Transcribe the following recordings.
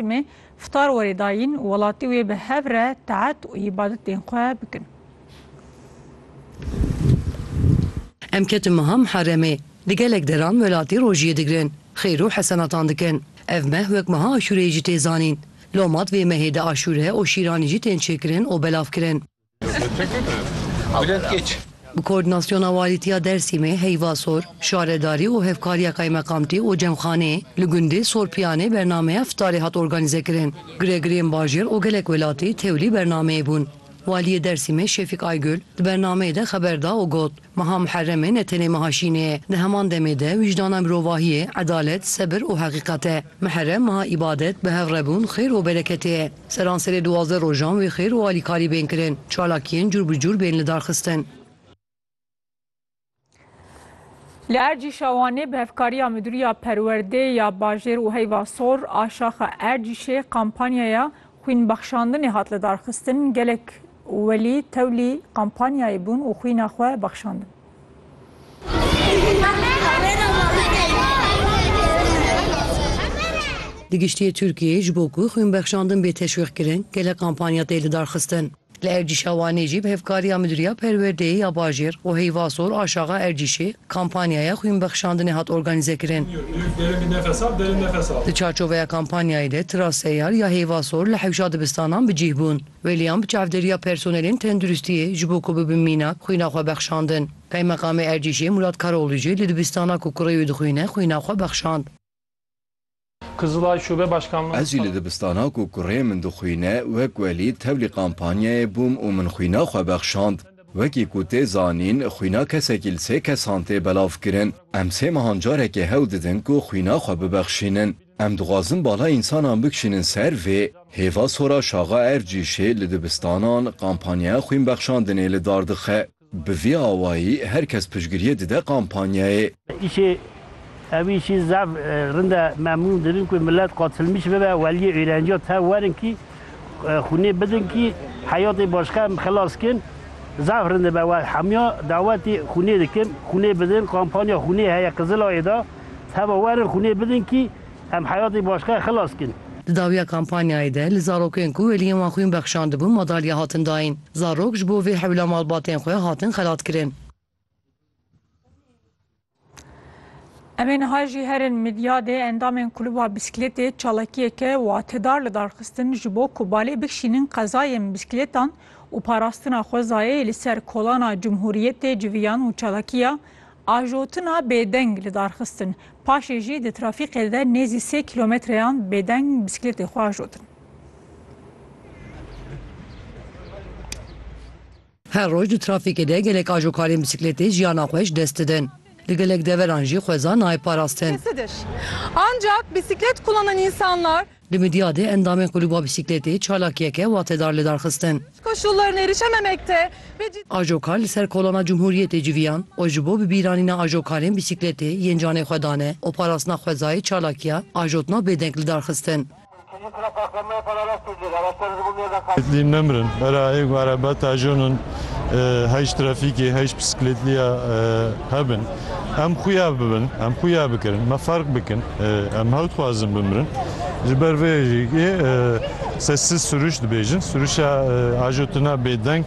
Me fitar werê dayîn û welatî wê bi hev re taet û îbadetên xwe bikin. Em ketin meha Miheremê. Di gelek deran welatî rojiyê digirin, xêr û hesenatan dikin. Ev meh wek meha Aşûreyê jî tê zanîn. Lomat vê mehê di aşûre û şîranî jî tên çêkirin û belavkirin. Bi koordînasyona Walîtiya Dêrsimê, Heyvasor, Şaredarî û hevkariya Kaymekamtî û Cemxaneyê li gundê Sorpiyanê bernameya fîtarê hat organîzekirin. Giregirêyên bajêr û gelek welatî tevlî bernameyê bûn. Waliyê Dêrsimê Şefîk Aygul di bernameyê de xeber da û got, Meha Muherremê ne tenê meha şînê ye, di heman demê de wîcdana mirovahiyê, edalet, sebir û heqîqet e. Muherrem meha îbadet, bihevrebûn, xêr û bereketê ye. Seranserê duwazdeh rojan wê xêr û alîkarî bên kirin, çalakiyên cûr bi cûr bên lidarxistin. Li Ercî Şawanê bi hevkariya Midûriya Perwerdê ya Bajêr û Heyva Sor a Şaxa Ercîşê kampanyaya xwînbexşandinê hat lidarxistin, gelek Welî tewlî kampanyayê bûn û xwîna xwe bexşandin. Di giştî Tirkiyeyê ji bo ku xwînbexşandin bê teşwîqkirin gelek kampanya tê lidarxistin. Li Erdîşa Wanê jî bi hevkariya Midûriya Perwerdeyê ya Bajêr û Heyva Sor a Şaxa Erdîşê kampanyaya xwînbexşandinê hat organîzekirin. Di çarçoveya kampanyayê de tira seyar ya Heyva Sor li hewşa dibistanan bi cîh bûn. William bi çavdêriya personelên tenduristiyê ji bo ku bibin mînak, xwîna xwe bexşandin. Kaymeqamê Erdîşê Murat Karoğlu jî li dibistana ku kurê wî dixwîne xwîna xwe bexşand. Kızılay Şube Başkanlığı Ez jî li dibistana ku kurê min dixwîne wek welî tevlî kampanyayê bûm û min xwîna xwe bexşand. Wekî ku tê zanîn xwîna kesekî li sê kesan tê belavkirin. Em sê mehan carekê hewl didin ku xwîna xwe bibexşînin. Em dixwazin bala însanan bikişînin ser vê hêva sora Şaxa Ercîşê li dibistanan kampanyaya xwînbexşandinê li dar dixe. Bi vî awayî her kes piştgiriyê dide kampanyayê. Îşê ew îşî zaf rind e. Memnûn dibin ku milet qatilmîş bibe. Weliyê êrenciya tev werin kî xûnê bidin kî heyatê başka em xilas kin. Zaf rind dibe. Hemiya dawetê xûnê dikim. Xûnê bidin. Kampanya xûnê heye Qizilayê de. Heva werin xûnê bidin kî em heyatê başkayê xilas kin. Di dawiya kampanyayê de li zarokên ku wêliyên wan xwîn bexşandibûn madalya hatin dayîn. Zarok ji bo vê hewla malbatên xwe hatin xelatkirin. Em ê niha jî herin Midyadê endamên kulûba bîsklêtê çalakiyeke watedar li dar xistin ji bo ku balê bikişînin qezayên bîsklêtan û parastina xwezayê li ser kolana Cumhuriyetê civiyan û çalakiya Ajotina bêdeng li dar xistin. Paşê jî di trafîkê de nêzî sê kîlometreyan bêdeng bisiklêtê xwe ajotin. Her roj di trafîkê de gelek ajokarên bisiklêtê jiyana xwe ji dest didin. Li gelek deveran jî xweza nayê parastin. Ancak bisiklet kullanan insanlar. Di midya de endamên Kulûba Bîsîkletê çalakiyeke watedar li dar xistin. Ajokar li ser kolana Cumhuriyetê civiyan û ji bo bibîranîna ajokarên bîsîkletê yên canê xwe dane û parastina xwezayê çalakiya ajotna bêdeng li dar xistin. Bîsîkletlî nemirin, era ê ku erebet ajonin heyî ji trafîkê heyî ji bîsîkletliya hebin. Em xuya bibin, em xuya bikirin, me ferq bikin, em hew dixwazin bimirin. Ji ber vê jî sessiz sürüş dibêjin. Sürüşa ajo tuna bêdeng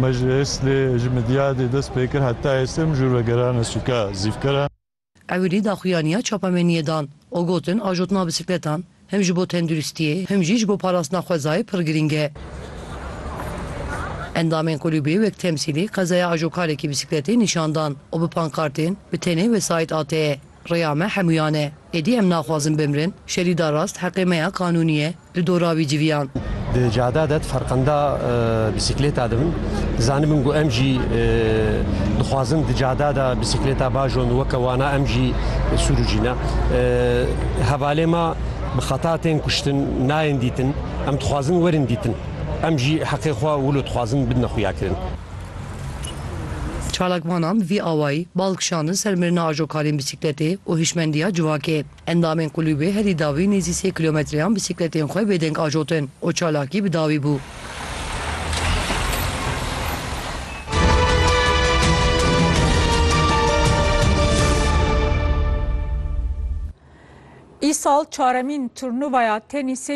me ji Êslê ji Midyadê dest pê kir heta Êslê em jûr ve gerane sûka Zîvkera. Ewilî daxuyaniya çapameniyê dan û gotin ajotina bisikletan Him ji bo tenduristiyê, him jî ji bo parastina xwezayê pir girîng e. Endamên kulûbê wek temsîlî qezaya ajokarekî bîsîkletê nîşan dan û bi pankartên Bi tenê wesayît AT'e, rêya me hemûyan e, êdî em naxwazin bimrin, şerî da rast heqê me ya kanûnî ye, li dora wî civiyan. Di cada de di ferqenda bîsîkleta de bin. Zanibin ku em jî dixwazin di cada de bisikleta bajon weke wana em jî sûrûcîne. Hevalê ma bi xeta tên kuştin, nayên dîtin. Em dixwazin werin dîtin. Em jî heqê xwe wilo dixwazin bidine xuyakirin. Çalakvanan vî awayî bal kişandin ser mirina ajokarên bisikletê û hişmendiya civakê. Endamên kulîbê herî dawî nêzî sê kîlometreyan bîsîkletên xwe bêdeng ajotin û çalakî bi dawî bû. Îsal çaremîn turnuvaya tenîsê